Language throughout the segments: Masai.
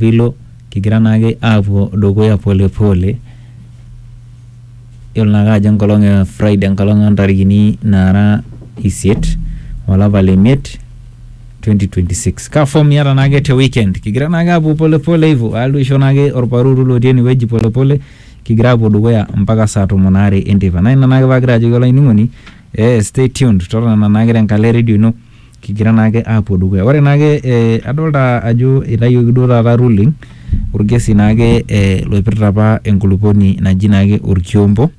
Pilo kigira naake aapuo dukuya pole pole yiolo naake ajo enkolong e Friday enkolong ontarikini naara isiet olapa le miet 2026 kaa form iyata naake te weekend kigira naake aapuo pole pole hivyo alo aisho naake orparuuru lotii enewueji pole pole kigira aapuo dukuya mpaka saa tomon aare enteipa naa ina naake paagira ajoki olainining'oni eh stay tuned totona naake tenkalo e redio ino. kigira naake aapuo dukuya. Ore naake eh, adolta ajo eitayioki duo taata ruling orkesi naake eh, loipirta apa enkulupuoni naji naake orkiombo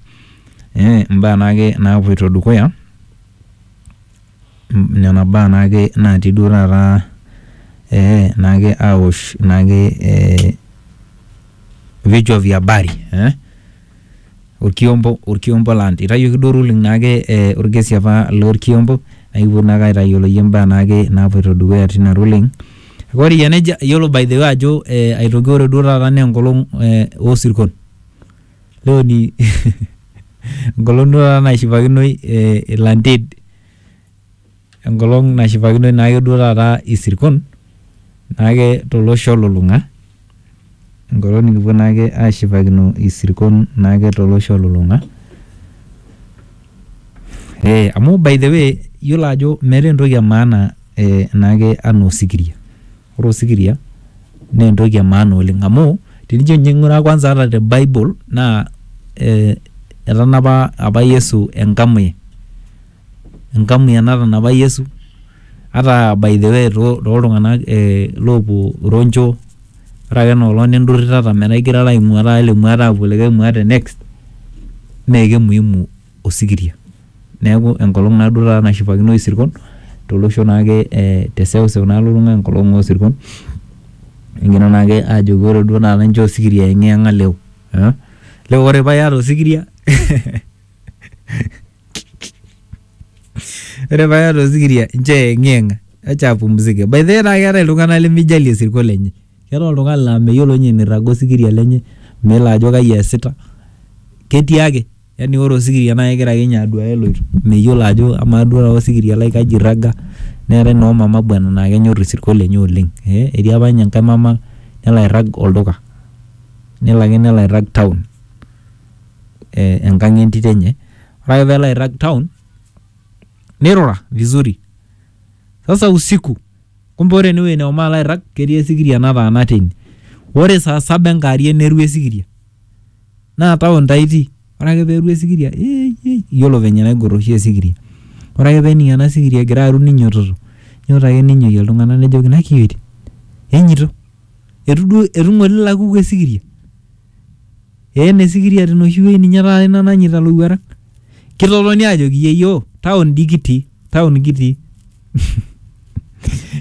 eh, imbaa naake naapuoito dukuya mm, nena baa naake naatii duo taata eh, naake awosh naake eh, vichwa vya habari eh. Orkiombo, Orkiombo land. Eitayioki duo ruling naake eh, orkesi apa lorkiombo naa ikipuo naake aitayiolo iyie imbaa naake naapuoito dukuya tina ruling. Kake ore eyia nejia iyiolo by the way ajo eh, aitoki ore duo taata naa enkolong eh, osirkon. Leo ni enkolong duo taata naishipakinoi eh, ilanted. Enkolong nashipakinoi naake duo taata isirkon naake tolosho olulung'a, enkolong nikipuo naake ashipakino isirkon naake tolosho olulung'a. Ee amu by the way iyiolo ajo meeta entoki e maana ee naake enaa osikiria, ore osikiria naa entoki e maana oleng' amu tenijo nye ing'uraa kwanza ata te bible naa ee etanapa apa Yesu engamuye. enkamia natanapa Yesu, ata by the way tooltung'anak loopuo Roncho, ore ake enoolong nindurritata metaa igirara aing'ua taata ele muaata aapuo likae muaata next mee kemuimu osikiria. Neeku enkolong naaduo taata nashipakinoyu isirkon tolosho naake te seuseu nalulung'a enkolong oo sirkon egira naake aajoki ore duo taata inchoo osikiria aiyeng'iyeng'a leo. Leo ore paa iyata osikiria hehehe. Ore paa iyata osikiria nchoo eyeng'iyeng'a acha apumzike. By the way naa keetae iltung'anak lemijali osirua lenye. Keetae oltung'ani laa meyiolo ninye enirraga osikiria lenye, meyiolo ajo kai eesita, ketii ake yani ore osikiria naa kegira ake ninye aduaya eloito. Meyiolo ajo amaa duo taata osikiria lai kaji eirraga. Neetae noo mama bwana naa kenyorr isirkon lenye oleng. Etii apa ninye enkae mama nelo airrag olduka. Nelo ake nelo airrag town enkang entito enye ore ake peelo airrag town nirura vizuri sasa usiku kumbe ore enewueji nehomo alo airrag ketii esikiria nataana teine ore saa saba enkarie neru esikiria naa town taa itii ore ake peru esikiria ei ei yiolo venye enaigorr oshi esikiria ore ake pening ena sikiria egira aru ninyototo inyototo ake ninyoyie iltung'anak nejoki nakiyuoitin enyito etu duo etu ng'ole ila kuku esikiria. Eena esikiria tenoshi wueji ninye taata iina nanyaita ilowuarak. Kitotoni aajoki yieyio town doi kitii town kitii.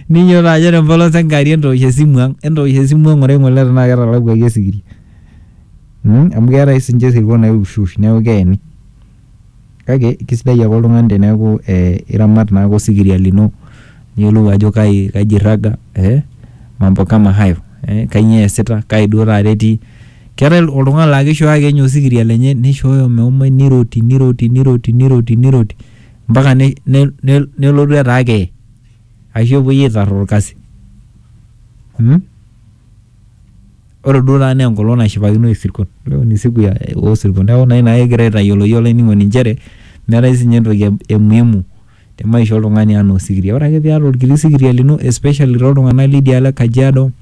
Ninyiototo aajo ore empolos enkewarie entoosh esimu ang, entoosh esimu ang ng'ura ng'ole tenaa ketalakuaki osikiria. Amuu keetae oshi sinche isirkon oiushwush niaku keeni. Kake kisidai ake oltung'ani teneeku iramat naake osikiria lino niyolou ajo kai kaji iraga ee mambo kama hayo, kanyoo easita, kai duo taata etii. Keetai oltung'ani laake ishooyo ake nye osikiria lenye nishooyo meomai niroti niroti niroti niroti niroti mpaka nelotu etaa kee ashu epuoi aitar orkasi. Ore duo taata naa enkolong nashipakino isirkon. Leo ni siku ya oo sirkon. Neeku naa ina kigira aitayioloki olainining'oni inchere meetae siininye entoki e muhimu te maisha oltung'ani enaa osikiria. Ore ake piata orkiti sikiria lino especially toltung'anak lidia alo e Kajiado,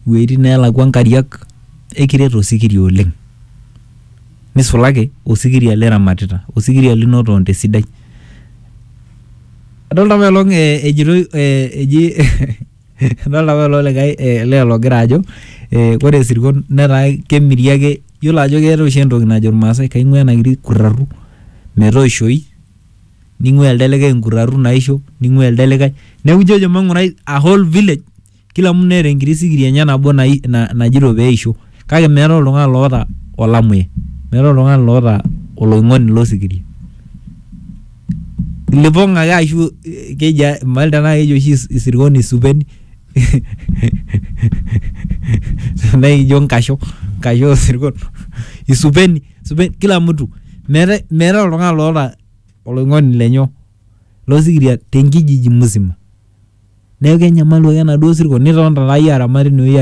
iwueitin neelakua inkariak, aikiret osikiria oleng. Nisulaki osikiria liramatita. Osikiria linoto te sidai. Adolita apailong ejitoi eji Idolta apa ilo likae eh, lee logira ajo eh, ore isirkon netaa kemiri ake yiolo ajo keeta oshi entoki najo irmaasai kaing'ua ena kiti kurraru metoishoi ning'ua elde likae inkurraru naisho ning'ua elde likae neku ijojo mang'urai a whole village kila mtu neeta enkiti sikiri enye nabo nai- na- najito peisho kake meetae oltung'ani loota olamuya meetae oltung'ani loota oloing'oni losikiria. Lipong ake ashu eh, keji a- mayiolo tenaa keji oshi is- isirkon isupeni tenaa ikijo nkasho nkasho osirkon isupeni isupeni kila mtu meetae meetae oltung'ani loota oloing'oni lenye losikiria tenkijiji musima neeku kenyamalu ake enaduo sirkon nitonita taa iyie aramat tinewueji are.